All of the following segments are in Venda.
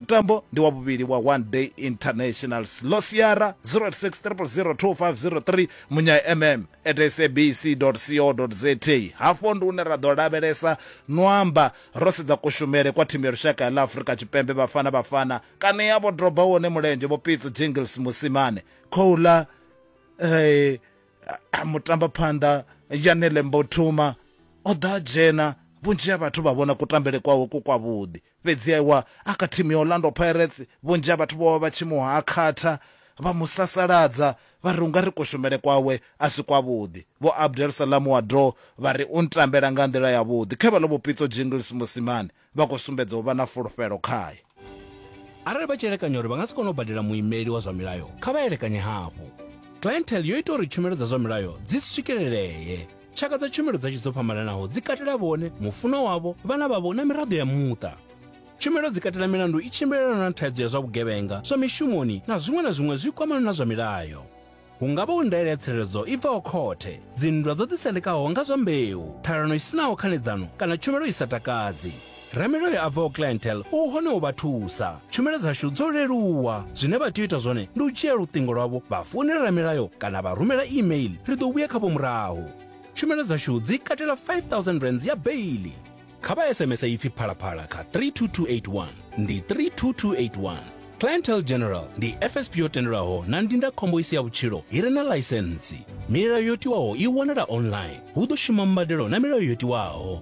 mutambo ndi wa vhuvhili wa one day internationals lo siara 06000253 munya mm at sabc co za hafho ndi une ra ḓo lavhelesa no amba ro sedza kushumele kwa thimu ya lushaka ya ḽa afurika tshipembe vhafana vhafana kana ya vho droba wone mulenzhe vho pitso jingles musimane khou ḽa eh, mutambaphanḓa yanele mbothuma o ḓa dzhena vhunzhi ha vhathu vha vhona kutambele kwawe ku kwavhuḓi Fhedzi e wa a kha thimu ya Orlando Pirates, vhunzhi ha vhathu vho vha vha tshi mu hakhatha, vha mu sasaladza, vha ri u nga ri kushumele kwawe a si kwavhuḓi. Vho Abdel Salam Ouaddou vha ri u ntambela nga nḓila yavhuḓi. Khe vha ḽo vho Pitso Jingles Mosimane vha khou sumbedza u vha na fulufhelo khae. Arali vha tshi elekanya uri vha nga si kone u badela muimeli wa zwa milayo, kha vha elekanye hafhu. Clientele yo ita uri tshumelo dza zwa milayo dzi swikelelee. Tshaka dza tshumelo dzashu dzo fhambananaho dzi katela vhone, mufunwa wavho, vhana vhavho na miraḓo ya muṱa. Tshumelo dzi katela milandu i tshimbilelanaho na thaidzo ya zwa vhugevhenga, zwa mishumoni na zwiṅwe na zwiṅwe zwi kwamanaho na zwa milayo. Hu nga vha hu ndaela ya tsireledzo i bvaho khothe, dzinndwa dzo ḓisendekaho nga zwa mbeu, ṱhalano i si naho khanedzano kana tshumelo i sa takadzi. Ramilayo a bvaho Clientele u hone u vha thusa. Tshumelo dzashu dzo leluwa. Zwine vha tea u ita zwone ndi u dzhia luṱingo lwavho vha founela Ramilayo kana vha rumela e-mail, ri ḓo vhuya khavho murahu. Tshumelo dzashu dzi katela R5000 ya beiḽi. Kha vha SMS ipfi Phalaphala kha 32281. Ndi 32281. Clientele General ndi FSP yo tendelwaho na ndindakhombo i si ya vhutshilo i re na ḽaisentsi. Milayo yo tiwaho i wanala online. Hu ḓo shuma mbadelo na milayo yo tiwaho.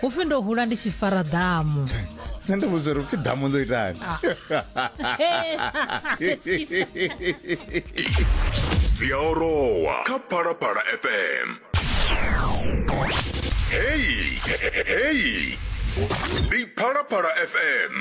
hu pfi ndo hula ndi tshi fara ḓamu nṋe ndi vhudza uri upfi ḓamu ḽo itani dzi a orowa kha phalaphala fm hei hei ndi phalaphala fm